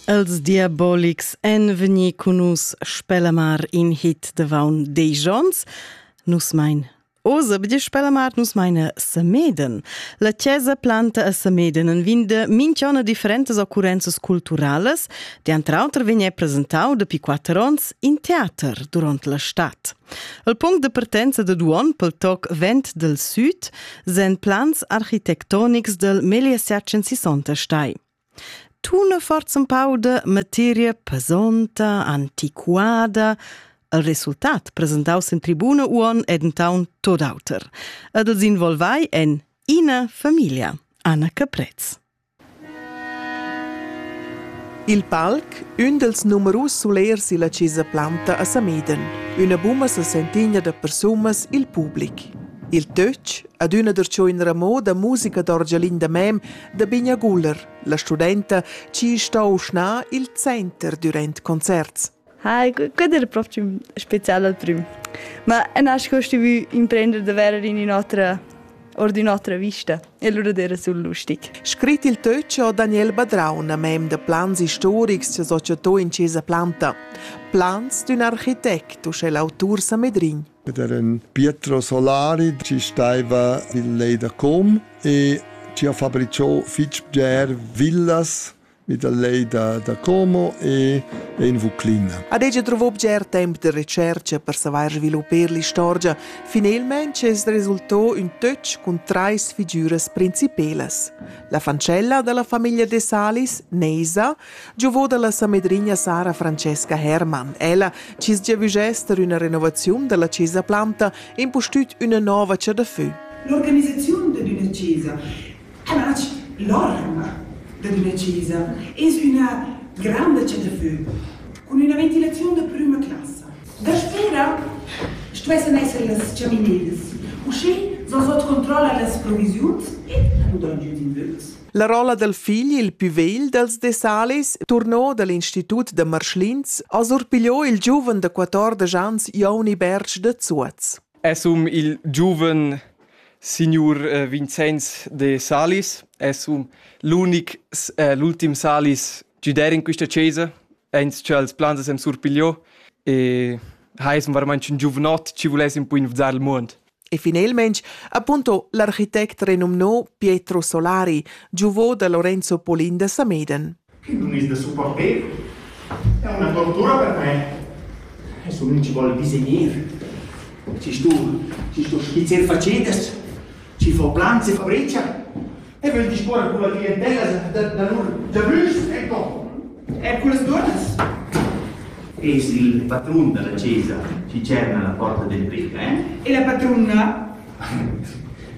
Els Diabolics èn vegnì cun nus Spellamar in hit d'avaun Digions. Nus mein Oz bdi Spellamart nus meine Sameden. La chiesa planta a Sameden en vinde minchona differentas occurrenzas culturales, die entre auter vegn presentau dapi quatter onns in teater durant la stad. El punct de partenza dad uonn pel toc Vent del Süd sen plans architectonics del Megliesertchen sissonta stai. Tune forza un pau de materia pesonta, antiquada, il resultat presentaus in tribuna uon ed in taun tot auter. Ed els involvai en ina familia, Anna Caprez. Il palc, ün dals numerus sulers illa Chesa Planta a Sameden, üna buma s'la sentigna da persunas i'l public. Il töch, adüna darcho in ramò da musica d'orgialin da mem da Bigna Guller, la studenta chi sto uschna i'l center dürant concerts. Hi, quel era propriu special al prüm. Ma a nasc ho stuvü imprender davers in ün'otra or d'ün'otra vista e lura d'eira sul lustig. Scrit il töch ho Daniel Badraun, mem da plans istorics, s'associato in Chesa Planta. Plans d'ün architect, uschè l'autur Samedrin. Ed era un Pietro Solari ci staiva il lei da Com e ci ha fabricato fitg bger villas vi da lei da, da Como e, e in Vuclina. Ad ella trovò bger temp de recerca per savair sviluppar l'istorgia. Finalmente es resultò un töch cun trais figüras principelas. La fancella della famiglia de Salis, Neisa, giovò dalla samedrigna Sara Francesca Hermann. Ella cis giavügester una renovazione della chesa planta e impustüt una nova cer de feu. L'organizzazione di una chesa Tratg l'orma da decisa es üna granda chatafögl cun üna ventilaziun da prüma classa. Daspera stuessan esser las chamininas. Uschè s'ho sot controlla las provisiuns e nu dan giü d'invögls. La rolla dal figl il pü vegl dals Dessalis, turno dal institut da Marschlins, ha surpigliò il giuven da quatordesch ans Joni Bertsch da Zuoz. Es hom il giuven Signur Vincenz de Salis es un l'unic l'ultim Salis giudèr in quista chesa aint cha els plans as han surpigliò e ha es varmaint ün giuvnot chi vuless un po invezar il muond. E finelmaing appunto l'architect renumnò Pietro Solari, giuvò da Lorenzo Polin da Sameden. Che nun es da supporter? È üna tortura per me. Adesso nun ci vuol disegner. Ci sto, ci sto skizzer facetas, ci fo planze fabrecia e vögl disporre con la clientella da, da lur giabrüschs, ecco. E con las dunas. Es il patrun della chiesa ci cerna la porta del brica, eh? E la patruna?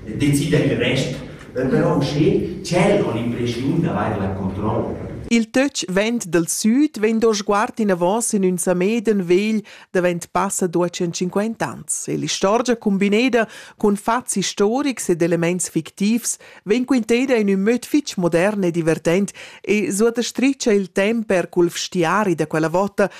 Decida il rest però uschè tschel con l'impreschiun d'avair la controlla. Il töch vent dal süd vegn do sguard inavos in ün Sameden vegl davent passa duocent cinquanta ans e l'istorgia cumbineda cun fats istorics ed elements fictivs vegn quinteda in ün möd fich modern e divertent e suottastricha il temp per cul vstiari da quella vota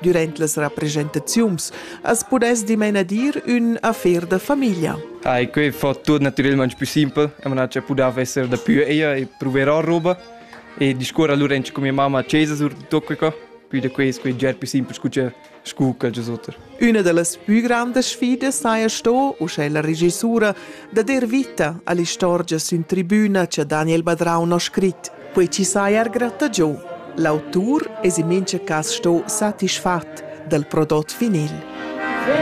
Durant las representaziuns as pudess dimena dir ün affair da famiglia. Ah, que fa tuot natüralment più simpel. E man ha pudà esser da più ella e proverà roba e discorre allora con mia mamma a casa sur tutto questo. Più da questo è già più semplice che scu che sotter. Una delle più grandi sfide saja sto, usche la regissura, da der vita all'istorgia sün tribuna che Daniel Badraun ha scrit. Quei ti sai er gratagiu. L'autur es in mincha cas sto satisfat dal prodot finil.